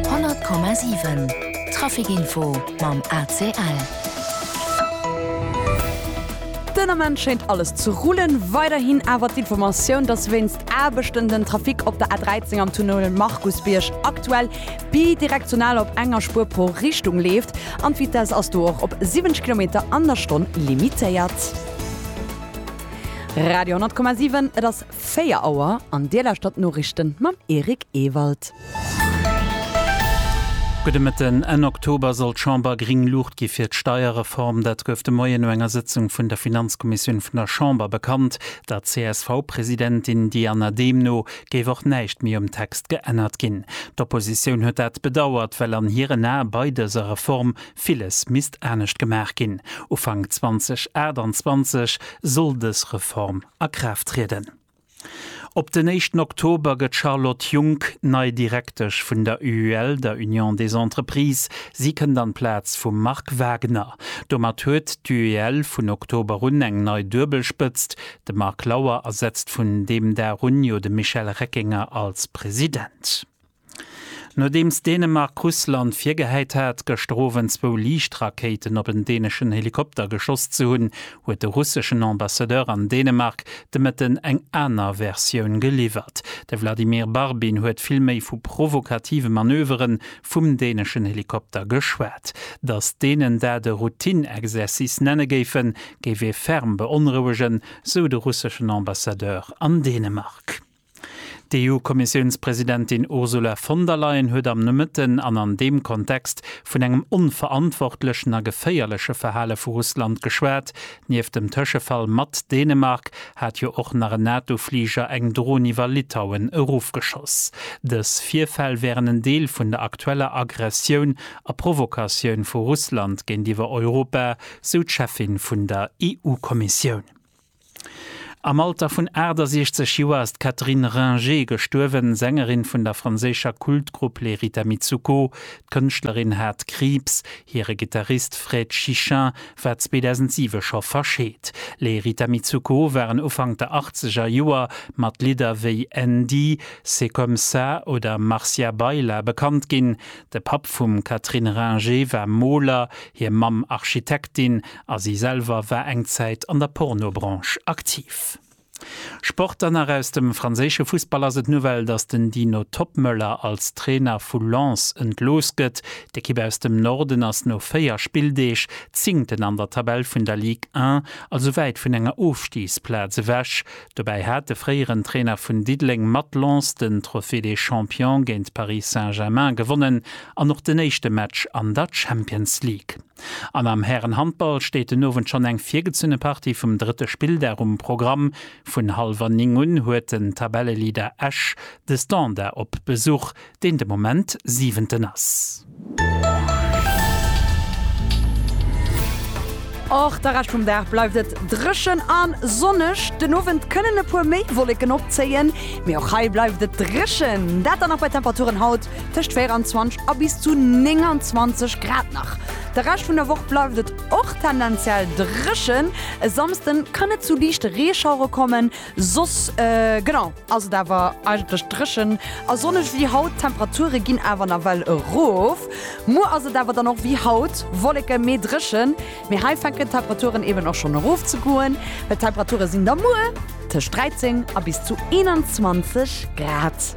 100,7 Trafic Info mam ACL. Den Ament schéint alles ze rullen. Weiderhin awer d'Informatioun, dass wéinst Aarbechten den Trafic op der A13 am Tunnel Markusbierg aktuell bidirektional op enger Spuer pro Richtung leeft an d'Vitesse ass do och op 70 Kilometer an der Stonn limitéiert. Radio 10,7 Et ass. 4 Auer an Dir lauschtert d'Noriichten mam Eric Ewald. Gudde Mëtten. Enn Oktober soll d'Chamber gréng Luucht gi fir d'Steierreform. Dat gouf de Moien no enger Sëtzung vun der Finanzkommissioun vun der Chamber bekannt. Der CSV-Presidentin Diana Dehm no géif och näischt méi um Text geännert ginn. D'Oppositioun huet dat bedauert, well an hiren Ae bei dëser Reform villes misst anescht gemaach ginn. Ufank 2028 soll dës Reform a Kraaft trieden. Op den éischten Oktober gëtt d'Charlotte Junck nei Direktesch vun der UUL, der Union des Entreprises. Si kënnt an d'Plaz vum Marc Wagner. Domat huet d'UUL vun Oktober un eng nei Duebelspëtzt. De Marc Lauer ersetzt vun deem Dag un jo de Michel Reckinger als President. Nodeems Dänemark Russland virgehäit hat, gëschter Owend zwou Liichtrakéiten op en däneschen Helikopter geschoss ze hunn, huet de russeschen Ambassadeur an Dänemark de Mëtten eng aner Versioun geliwwert. De Vladimir Barbin huet vill méi vu provokative Manövere vum däneschen Helikopter geschwat. Datt Dänen dat e Routine-Exercice nenne géifen, géif ee ferm beonrouegen, sou de russeschen Ambassadeur an Dänemark. D'EU-Kommissiounspresidentin Ursula von der Leyen huet am Nomëtten an an deem Kontext vun engem onverantwortlechen a geféierleche Verhale vu Russland geschwat. Nieft dem Tëschefall mat Dänemark hat jo och nach en NATO-Fliger eng Dron iwwer Litauen erofgeschoss. Dës Virfäll wären en Deel vun der aktueller Aggressioun a Provokatioun vu Russland géintiwwer Europa, sou d'Cheffin vun der EU-Kommissioun. Am Alter vun 68 Joer ass d'Catherine Ringer gestuerwen, Sängerin vun der franséischer Kultgrupp Les Rita Mitsouko. D'Kënschtlerin hat Kriibs. Hire Gittarist Fred Chichin war 2007 scho verscheet. Les Rita Mitsouko waren Ufank der achtzeger Joer mat Lidder wéi Andy, C'est comme ça oder Marcia Baila bekannt ginn. De Papp vum Catherine Ringer war Moler, hir Mamm Architektin A si selwer war eng Zäit an der Pornobranche aktiv. Sport dann nach, Aus dem franséische Fussball ass et d'Nouvelle, datt den Dino Toppmöller als Trainer vu Lens entlooss gëtt. D'Ekipp aus dem Norden ass no 4 Spilldeeg Zéngten an der Tabell vun der Ligue 1, also wäit vun enger Ofstigsplaz ewech. Dobäi hat de fréieren Trainer vun Diddeleng mat Lens den Trophée des Champions géint Paris Saint-Germain gewonnen an och den éischte Match an der Champions League. An am Härenhandball steet den Owend schonn eng virgezunne Partie vum drëtte Spilldag um Programm. Vun hallwer 9 un huet den Tabelleleader Esch de Standard op Besuch, deen de Moment Siwenten ass. Och de Rescht vum Dag bleift et dréchen a sonneg. Den Owend kënnen e puer méi Wolleken opzéien, mee och hei bleift et dréchen, dat dann och bei Temperaturen haut tëscht 24 a bis zu 29 Grad nach. De Rescht vun der Woch bleift et och tendenziell dréchen, e Samsde kann et zu liichte Reeschauere kommen, soss genau ass et awer eigentlech dréchen a sonneg ewéi haut. D'Temperature ginn awer nawell erof, muer ass et awer dann och ewéi haut wolleke mee dréchen, mee hei fänken d'Temperaturen eben och schonn erof ze goen, well d'Temperature sinn da muer tëscht 13 a bis zu 21 Grad.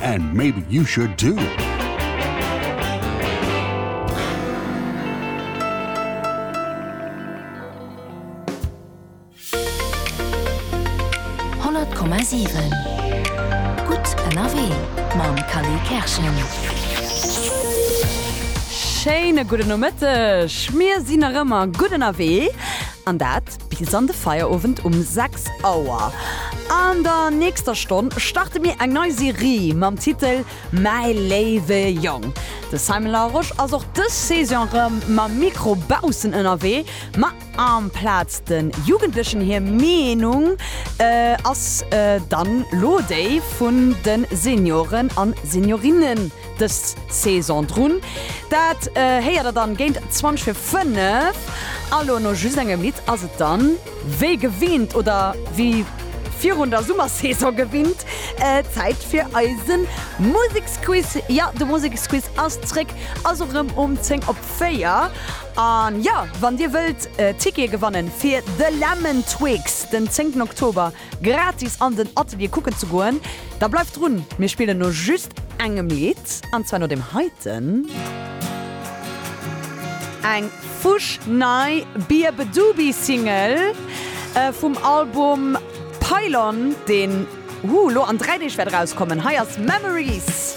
And maybe you should too! Schéine gudden Nomëtteg! Mir sinn nach ëmmer gutt ënnerwee an dat Bis an de Feierowend um 6 Auer. An der nächster Stonn starte mir eng nei Serie mam Titel Mäi léiwe Jong. De Simon Larosche ass och dës Saison rëm mam Mikro baussen ënnerwee, ma amplaz de Jugendlechen hir Meenung ass dann lo déi vun de Senioren a Seniorinnen. Dës Saison drun. Dat héiert der dann géint 20 fir 5. A lo no just engem Lidd ass et dann wéi gewinnt, oder wéi virun der Summersaison gewinnt, Zäit fir eise Museksquiz. Jo, de Museksquiz ass zréck, also erëm um 10 op 4. An jo, wann dir wëllt Tickete gewannen fir The Lemon Twigs den 10 Oktober, gratis an den Atelier kucken ze goen, da bleift drun, mir spillen no just engem Lidd, an zwar no deem heiten. Eng fuschnei Beabadoobee-Single vum Album Pylon, deen, hoo, lo an dräi Deeg wäert erauskommen. Hei ass Memories.